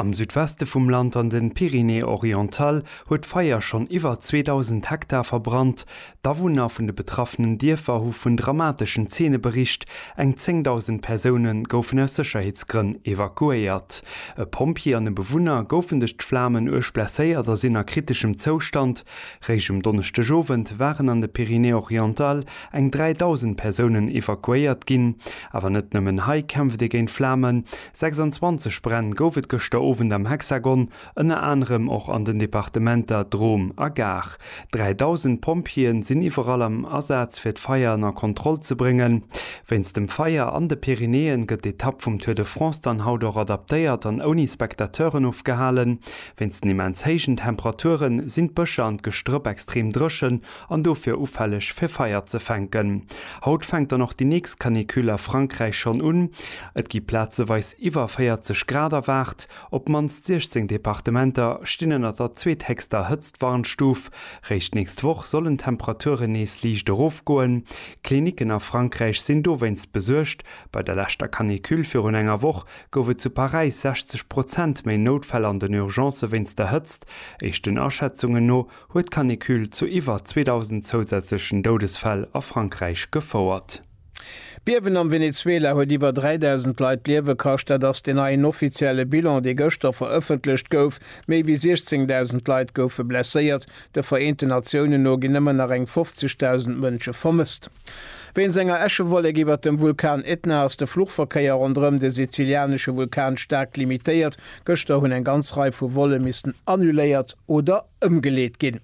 Am Südweste vum Land an den Pyrénées orientales huet d'Feier schonn iwwer 2.000 Hektar verbrannt. D'Awunner vun de betraffenen Dierfer hu vun dramateschen Zeene bericht. Eng 10.000 Persoune goufen aus Sécherheetsgrënn evakuéiert. E Pompjee an e Bewunner goufen duerch d'Flamen uerg blesséiert a sinn a kriteschem Zoustand. Réischt um Donneschdegowend waren an de Pyrénées orientales eng 3.000 Persounen evakuéiert ginn. Awer net nëmmen hei kämpft ee géint d'Flamen. 26 Bränn gouf et gëschter Owend am Hexagon, ënner anerem och an den Departementer Drôme a Gard. 3.000 Pompjeeën sinn iwwerall am Asaz fir d'Feier ënner Kontroll ze bréngen. Wéinst dem Feier an de Pyrenäen gëtt d'Etapp vum Tour de France dann haut och adaptéiert an ouni Spectateuren ofgehalen. Wéinst den immens héijen Temperaturen sinn d'Bëscher an d'Gestrëpp extrem dréchen an dofir ufälleg fir Feier ze fänken. Haut fänkt dann och déi nächst Canicule a Frankräich schonn un. Et gi plazeweis iwwer 40 Grad erwaart. Op d'mannst 16 Departementer stinn ënner der zweethéchster Hëtztwarnstuf. Réischt d'nächst Woch sollen d'Temperaturen nees liicht erofgoen. Klinicken a Frankräich sinn dowéinst besuergt. Bei der leschter Canicule virun enger Woch gouf et zu Paräis 60 Prozent méi Noutfäll an den Urgencë wéinst der Hëtzt. Éischten Aschätzungen no huet d'Canicule zu iwwer 2.000 zousätzlechen Doudesfäll a Frankräich gefouert. D'Biewen am Venezuela huet iwwer 3.000 Leit d'Liewe kascht. Dat ass deen neien offizielle Bilan, dee gëschter verëffentlecht gouf. Méi wéi 16.000 Leit goufe blesséiert. De Vereenten Natiounen no ginn ëmmer nach eng 50.000 Mënsche vermësst. Wéinst enger Äschewollek iwwert dem Vulkan Etna ass de Fluchverkéier ronderëm de sizilianesche Vulkan staark limitéiert. Gëschter hunn eng ganz Rei vu Volle missten annuléiert oder ëmgeleet ginn.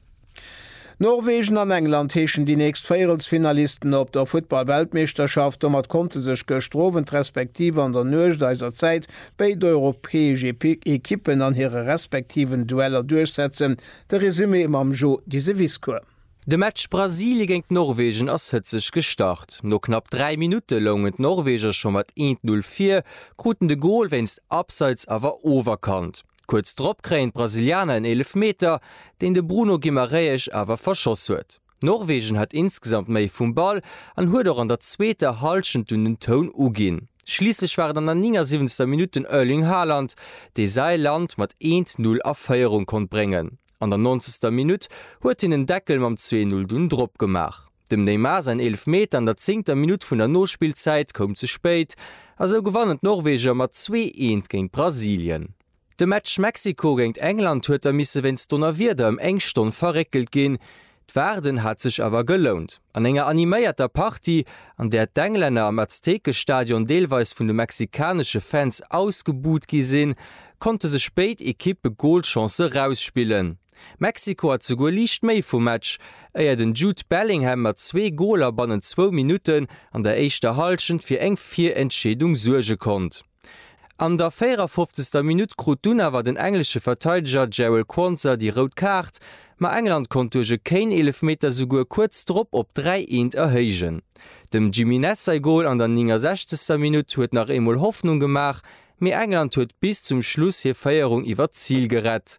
Norwegen an England heeschen déi nächst Véierelsfinalisten op der Futtball-Weltmeeschterschaft. Domat konnte sech gëschter Owend respektiv an der Nuecht eiser Zäit béid europäesch Ekippen an hire respektiven Dueller duerchsetzen. De Resumé mam Jo Giseviscour. De Match Brasilie géint Norwegen ass hëtzeg gestart. No knapp 3 Minutte loungen d'Norweger scho mat 1-0 vir, kruten de Gol wéinst Abseits awer oferkannt. Kuerz drop kréien d'Brasilianer en Eelefmeter, deen de Bruno Guimarães awer verschoss huet. Norwegen hat insgesamt méi vum Ball an huet och an der zweeter Hallschent dunn den Toun uginn. Schliisslech war et an der 79. Minutt den Erling Haaland, dee säi Land mat 1-0 a Féierung konnt bréngen. An der nonzegster Minutt huet hien en Deckel mam 2-Null dunn drop gemaach. Dem Neymar säin Eelefmeter an der zéngter Minutt vun der Nospillzäit koum ze spéit a sou gewannen d'Norweger mat zwee eent géint Brasilien. De Match Mexiko géint England huet da misse wéinst Donnerwieder ëm eng Stonn verréckelt ginn. D'Waarden hat sech awer gelount. An enger animéierter Partie, an där d'Englänner am Aztekestadion deelweis vun de mexikanesche Fans ausgebuht gi sinn, konnte sech béid Ekippe Golchancë rausspillen. Mexiko hat souguer liicht méi vum Match, éier den Jude Bellingham mat zwee Goler bannent zwou Minutten an der éischter Hallschent fir eng Virentscheedung suerge konnt. An der 54. Minutt krut dunn awer den englesche Verteideger Jarell Quansah déi rout Kaart, ma England konnt duerch e Kane-Eelefmeter souguer kuerz drop op 3, 1 erhéijen. Dem Jimenez säi Gol an der 69. Minutt huet nach eemol Hoffnung gemaach, mee England huet bis zum Schluss hir Féierung iwwer d'Zil gerett.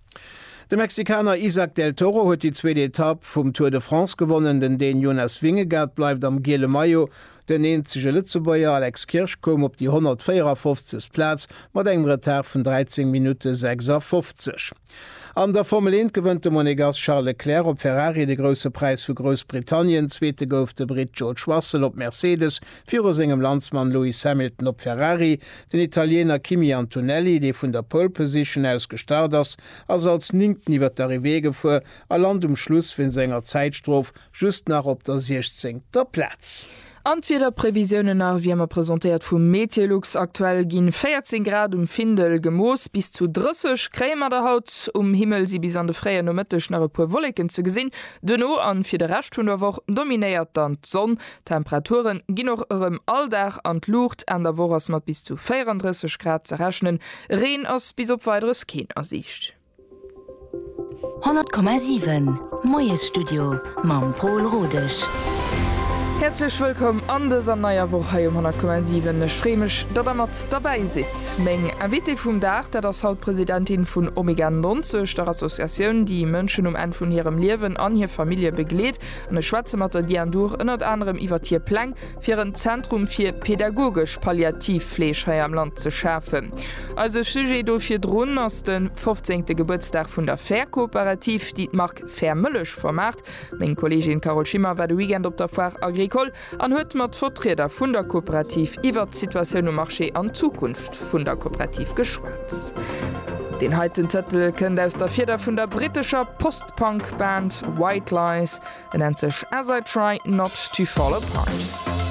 De Mexikaner Isaac del Toro huet déi zweet Etapp vum Tour de France gewonnen. Den Dän Jonas Vingegaard bleift am giele Maillot. Den eenzege Lëtzebuerger Alex Kirsch koum op déi 154. Plaz mat engem Retard vun 13 Minutte 56. An der Formel 1 gewënnt de Monegass Charles Leclerc op Ferrari de Grousse Präis vu Groussbritannien. Zweete gouf de Britt George Russell op Mercedes. Viru sengem Landsmann Lewis Hamilton op Ferrari. Den Italiener Kimi Antonelli, dee vun der Pole Position aus gestart ass, ass als Néngten iwwer d'Arrivée gefuer a lant um Schluss wéinst enger Zäitstrof just nach op der siechzéngter Plaz. An d'Wiederprevisiounen nach, wéi ëmmer presentéiert vu Meteolux. Aktuell ginn 14 Grad um Findel gemooss, bis zu 30 kréie mer der haut. Um Himmel si bis an de fréien Nomëtteg nach e puer Wolleken ze gesinn, duerno an fir de Rescht vun der Woch dominéiert dann d'Sonn. D'Temperature ginn och erëm all Dag an d'Luucht, Enn der Woch ass mat bis zu 34 Grad ze rechnen, Reen ass bis op Weideres keen a Siicht. 100,7 Moiesstudio mam Pol Rodesch. Häerzlech wëllkomm an dëser neier Woch hei um 100,7. Ech free mech, datt der mat derbäi sidd. Meng Invitée vum Dag, dat ass haut d'Presidentin vun Omega 90, der Associatioun, déi Mënschen um Enn vun hirem Liewen an hir Famillje begleet. Mir schwätze mat der Diane Duhr ënnert anerem iwwert hir Pläng, fir en Zentrum fir pädagogesch Palliativfleeg hei am Land ze schafen. Eise Sujet do virdrun ass de fofzéngte Gebuertsdag vun der Fährkooperativ, déi d'Mark Fährmëllech vermaart. Meng Kolleegin Carole Schimmer war de Weekend op der Foire Agricole an huet mat Vertrieder vun der Kooperativ iwwert d'Situatioun um Marché an d'Zukunft vun der Kooperativ geschwat. Deen heiten Tëtel kënnt aus der Fieder vun der brittescher Post-Punk-Band White Lies, e nennt sech As I Try Not To Fall Apart.